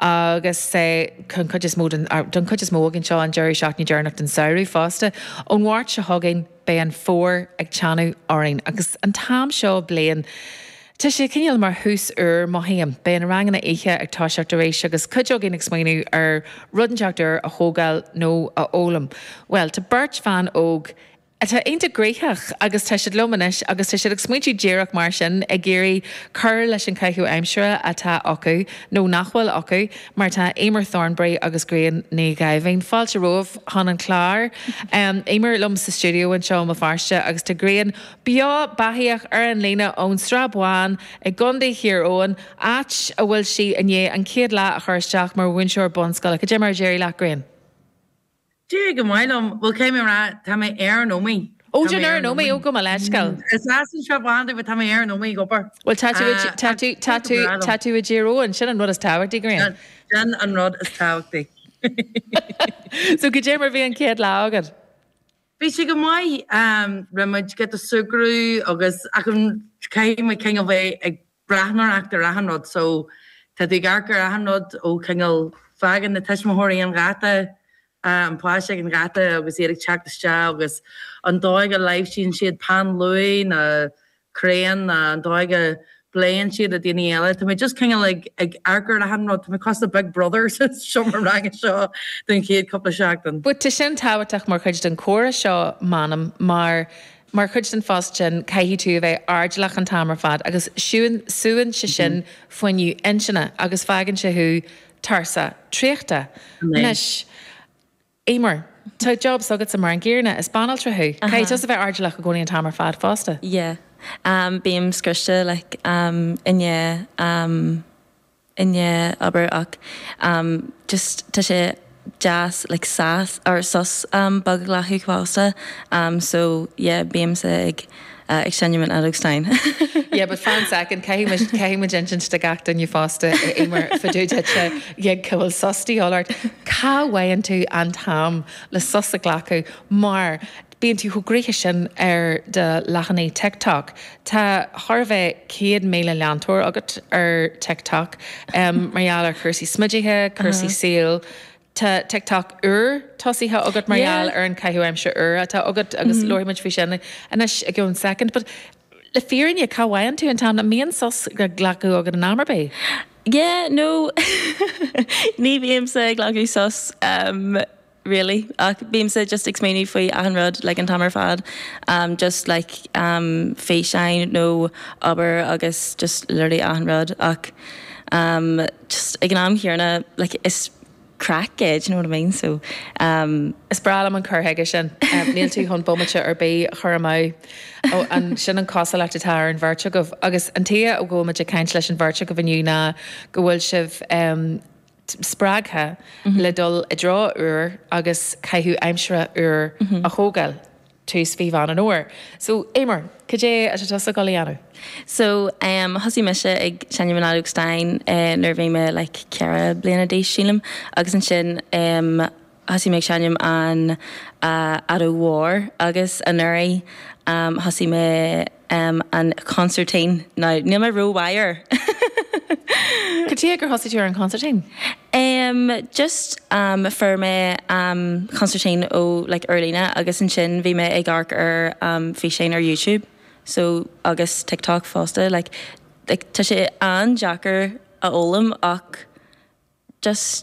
agus don chuid is mó den, don chuid is mó againn seo, an deireadh seachtaine deireanach den samhradh fosta. Ón Mháirt seo chugainn beidh an fómhar ag teannadh orainn, agus an t-am seo bliain, tá sé cineál mar thús úr, mothaím. Beidh na ranganna oíche ag toiseacht arís, agus cuid againn ag smaoineamh ar rud inteacht úr a thógáil nó a fhoghlaim. Bhuel, tá beirt bhan óg atá iontach gnoitheach agus tá siad liom anois agus tá siad ag smaointiú díreach mar sin, ag iarraidh cur leis an gcaitheamh aimsire atá acu, nó nach bhfuil acu, mar tá Eimear Thornbury agus Grian Ní Dhaimhín, fáilte romhaibh chun an chláir, Eimear liom sa stiúideo anseo i mBéal Feirste agus tá Grian beo beathaíoch ar an líne ón Srath Bán i gContae Thír Eoghain, áit a bhfuil sí i ndiaidh an chéad lá a chur isteach mar mhúinteoir bunscoile. Cad é mar a d'éirigh leat, Grian? D'éirigh go maith liom. Bhuel, caithfidh mé a rá, tá mé ar an Ómaigh. Ó, tá tú ar an Ómaigh, ó, gabh mo leithscéal. Is as an tSrath Bán domh, but tá mé ar an Ómaigh ag obair. Bhuel, tá tú, tá tú, tá tú, tá tú i dTír Eoghain, sin an rud is tábhachtaí, Grian. Sin an rud is tábhachtaí. So, cad é mar a bhí an chéad lá agat? Bhí sé go maith. Rinne muid giota súgradh agus, achan, caithfidh muid, kind of, bheith ag Breathnóireacht ar achan rud. So, tá tú ag amharc ar achan rud ó chineál, fágann na tuismitheoirí an gheata, an páiste ag an gheata agus iad ag teacht isteach agus an dóigh a láimhsíonn siad peann luaidhe nó crayon nó an dóigh a bpléann siad le daoine eile. Tá mé just cineál ag amharc ar achan rud. Tá mé cosúil le Big Brother sa seomra ranga seo don chéad cúpla seachtain. But tá sin tábhachtach mar chuid den chomhrá seo, m'anam, mar Mar chuid den phost sin, caithfidh tú a bheith airdeallach an t-am ar fad agus súnn sé sin fuinneamh intinne agus fágann sé thú tuirseach, traochta. Anois, Eimear, tá job s'agatsa mar an gcéanna, is banaltra thú, caithfidh tusa bheith airdeallach i gcónaí an t-am ar fad fosta. Yeah. Bím scriosta, like, i ndiaidh. i ndiaidh obair, ach just tá sé deas like sas or sos beag a ghlacadh fosta so yeah bímse ag ag seinm an fheadóg stáin. Yeah, but fan second, caithfidh muid, caithfidh muid insint do gach duine fosta, a Eimear, fá dtaobh díot, cé go bhfuil sos de dhíobháil ort, cá bhfaigheann tú an t-am le sos a ghlacadh mar Bíonn tú chomh gnoitheach sin ar do leathanaigh TikTok. Tá thar a bheith 100,000 leantóir agat ar TikTok mar gheall ar chúrsaí smididh, cúrsaí saoil. Tá TikTok úr tosaithe agat mar gheall ar an caitheamh aimsire úr atá agat agus labhróidh muid faoi sin anois i gceann soicind. But le fírinne, cá bhfaigheann tú an t-am? An mbíonn sos á ghlacadh agat in am ar bith? Yeah, no. Ní bhímse ag glacadh sos. really ach bímse just ag smaoineamh faoi achan rud like an t-am ar fad um just like um físeáin nó obair agus just léiriú achan rud ach um just ag an am chéanna like is craic é do you know what I mean so um. Is breá liom an cur chuige sin. Níl tú chun bomaite ar bith a chur amú. Sin an chosúlacht atá ar an bheirt agaibh. Agus an tuige go bhfuil muid ag caint leis an bheirt agaibh inniu ná go bhfuil sibh, em, spreagtha le dul i dtreo úr agus caitheamh aimsire úr a thógáil, tús fá Mheán an Fhómhair. So, Éimear, cad é atá tusa ag dul a dhéanamh? So, em, thosaigh mise ag seinm an fheadóg stáin, eh, nuair a bhí mé like ceithre bliana d'aois, sílim, agus ansin, em, Thosaigh mé ag seinm an Fheadóg Mhór agus anuraidh thosaigh mé an chonsairtín. Now, níl mé ró-mhaith air! Cad chuige gur thosaigh tú ar an chonsairtín? Em, just, em, fuair mé, em, consairtín ó, like, ar líne agus ansin bhí mé ag amharc ar, em, físeáin ar YouTube, so, agus TikTok fosta, like, like, tá sé an-deacair a fhoghlaim ach just,